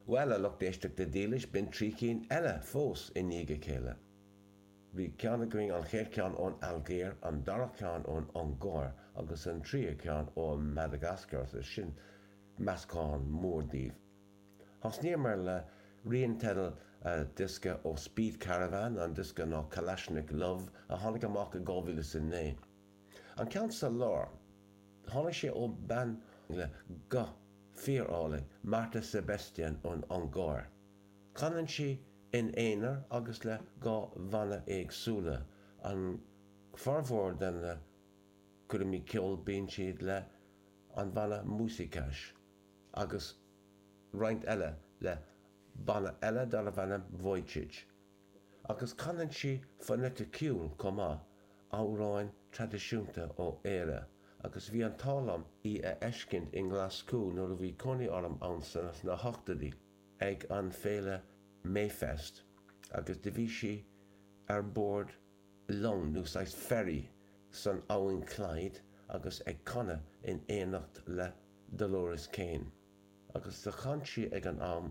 Bhuel, a lucht éisteachta dhílis, b'in trí chinn eile fós i ndiaidh a chéile. Bhí cinn againn, an chéad cheann ón Ailgéir, an dara ceann ón Ungáir agus an tríú ceann ó Mhadagascar agus sin meascán mór díobh. Thosnaíomar le rian teidil a diosca ó Speed Caravan, an diosca ná Kalashnik Love a tháinig amach i 2009. An ceann sa lár, tháinig sé ó bean le guth fíor-álainn, Marta Sebestyén ón Ungáir. Canann sí ina haonar agus le dhá bhanna éagsúla, an formhór de na curaimí ceoil bíonn siad le an bhanna Muzsikás agus roinnt eile le banna eile darbh ainm Vujicsics. Agus canann sí foinéiticiúil chomh maith, amhráin traidisiúnta ó Éire, agus bhí an t-ádh liom í a fheiscint i nGlaschú nuair a bhí cónaí orm ann sna hochtóidí ag an féile Mayfest agus do bhí sí ar bord long nó saghas ferry san abhainn Clyde agus ag canadh in éineacht le Dolores Keane agus do chan sí ag an am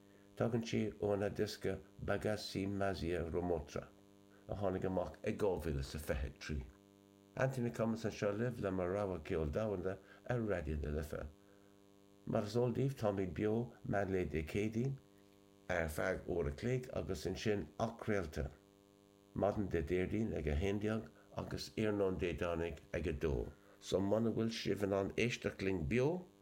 Tagann sé óna diosca Bagasy Mazia Romotra, a tháinig amach i 2023. Anthony Cummins anseo libh le mo rogha ceol domhanda ar Raidió na Life. Mar is eol daoibh, táimid beo meánlae Dé Céadaoin, ar feadh uair a chloig agus ansin athcraolta maidin Dé Déardaoin ag 11 agus iarnóin Dé Domhnaigh ag 2. So muna bhfuil sibh in ann éisteacht linn beo,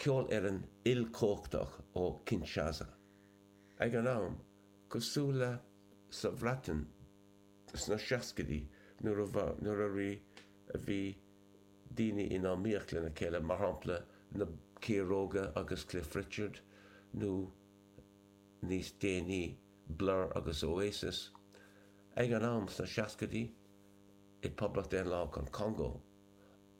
ceolfhoireann ilchumhachtach ó Kinshasa. Ag an am, cosúil le sa Bhreatain sna seascaidí nuair a nuair a bhí a bhí daoine in iomaíocht lena chéile, mar shampla na Ciaróga agus Cliff Richard nó níos déanaí Blur agus Oasis, ag an am sna seascaidí i bPoblacht Daonláthach an Chongó,